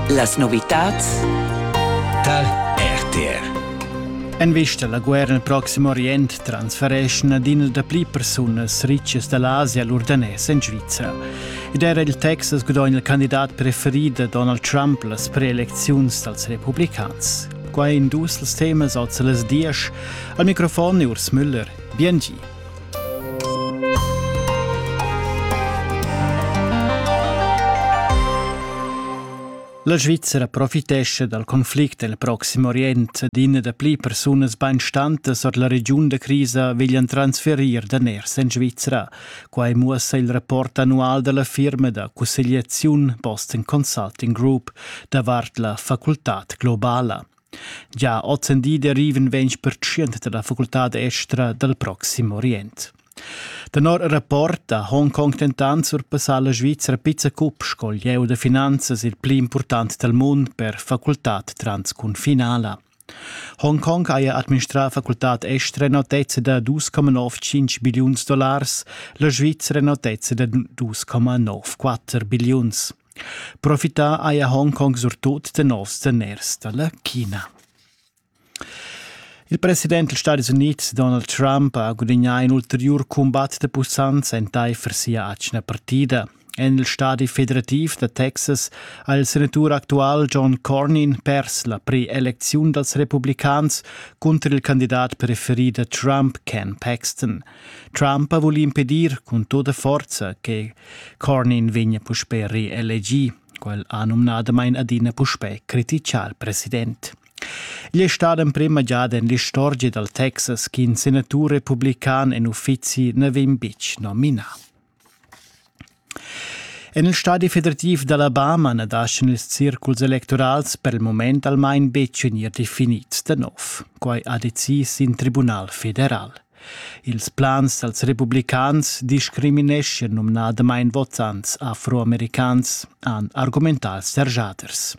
Las novitads tar RTR. En vista alla guerra nel prossimo Orient transfereschna adina da pli persunas ricas dall'Asia all'urdanès en Svizra. Ed era il Texas gudogna il candidat preferit da Donald Trump las preelecziuns dals republicans. Quai in dus els temas oz las dies. Al microfon è Urs Müller. Biengi. La Svizzera profitescha dal conflict el Proxim Orient d'ina da pli persunas bainstantas or la regiun da crisa veglian transferir daners en Svizzera. Quai muossa il rapport annual da la firma da cussegliaziun Boston Consulting Group davart la facultad globala. Gia ozendi derivan ventg pertschient dalla facultad estra dal Proxim Orient. Tenor il rapport da Hongkong dentant surpassa la Svizra pizza cup sco lieu da finanzas il pli important dal mund per facultad transcunfinala. Hongkong haja administrà facultad estra in notezza da 2,95 billiuns dollars, la Svizra in notezza da 2,94 billiuns. Profità haja Hongkong surtut tenor daners da la China. Il president dals Stadis Unids Donald Trump ha gudagnà in ulteriur cumbat da pussanza entaifer sia atgna partida. En il stadi federativ da Texas ha il senatur actual John Cornyn pers la pre-elecziun dals republicans cunter il candidat preferi da Trump Ken Paxton. Trump ha vuli impedir cun tutta forza che Cornin vegna puspè reelegì. Quel ha numnadamain adina puspè criticà il president. Igl è stat emprima giada en l'istorgia dal Texas ch'in senatur republican en uffizi na vegn betg nominà. En il stadi federativ d'Alabama na daschan ils circuls electorals per il mument almain betg vegnir definids da nov. Quai ha decis in tribunal federal. Ils plans dals republicans discrimineschan numnadamain votants afroamericans, han argumentà serjaders.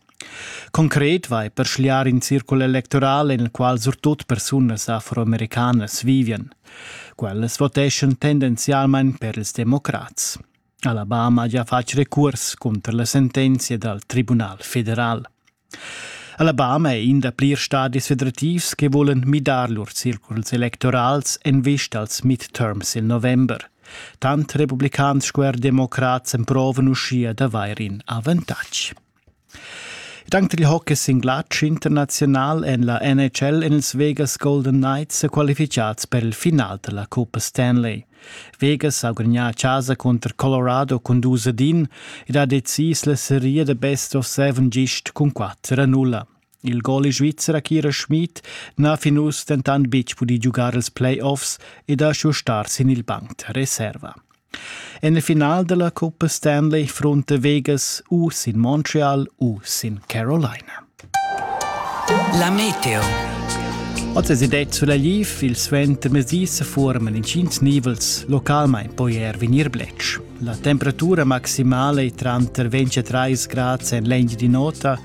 Concret vai per schliar in circul electoral en il qual surtut persunas afroamericanas vivian. Quellas voteschan tendenzialmain per ils democrats. Alabama ha fatg recurs cunter la sentenzia dal Tribunal federal. Alabama è in da plirs stadis federativs che volen midar lur circuls electorals en vista als midterms il november. Tant republicans sco er democrats emprovan uschia d'avair in avantatg. Dank dil hockey singlar internaziunal en la NHL en ils Vegas Golden Knights sa qualificads per il final della Coppa Stanley. Vegas ha gudagnà a casa contro Colorado con dus a din ed ha decis la seria da best of seven gist cun 4 a 0. Il gol svizzer Akira Schmid n'ha fin uss dentant betg pudì giugar els playoffs ed ha schuh star sin il banc da reserva. En il final della Coppa Stanley fronta Vegas u sin Montreal u sin Carolina. La Meteo. Oz è det sulla Liv il suentermezdi se forman in tschient nivels, localmain poi er venir blec. La temperatura maximale è tranter 23 grad en l'engio di nota